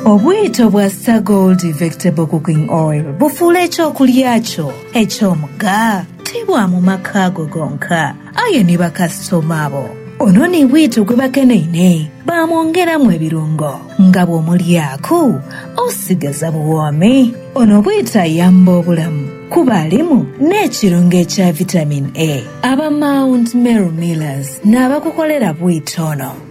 Obwito bwa Star Gold Vegetable Cooking Oil bufuula eky'okulya kyo eky'omugha. Ti bwa mu maka go gonka, aye ni bakasitoma bo. Ono ni bwito gwe bakeneine, baamwongeramu ebirungo nga bw'omulyaaku osigaza buwoomi. Ono bwito ayamba obulamu kuba alimu n'ekirungo ekya Vitamin A. Aba Mount Meru Millers n'abakukolera bwito ono.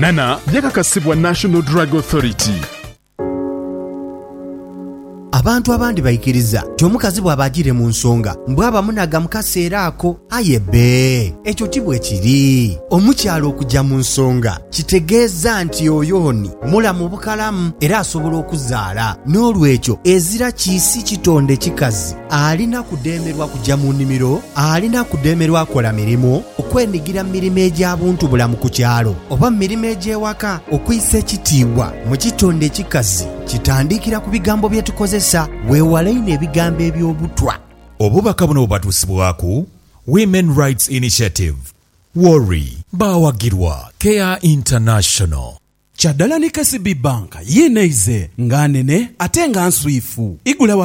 Nana yakakasibwa National Drug Authority. Abantu abandi baikiriza nti omukazi bwaba ajiire mu nsonga mbu aba munaga mu kaseera ako. Aye bbe, ekyo ti bwe kiri. Omukyala okuja mu nsonga kitegeeza nti oyo ni mulamu bukalamu era asobola okuzaala. N'olwekyo ezira kiisi kitonde kikazi. Alina kudheemerwa kuja mu nimiro, alina kudheemerwa kola mirimu, okwenigira mu mirimo egya buntubulamu ku kyalo oba mu mirimo egy'ewaka. Okwisa ekitiibwa mu kitonde ekikazi kitandikira ku bigambo bye tukozesa. Weewale inho ebigambo eby'obutwa. Obubaka buno bubatuusibwaku Women Rights Initiative, WORI, baawagirwa Care International. Kyadala ni KCB Bank, yiinaize nga nene ate nga nswifu. Igula wa.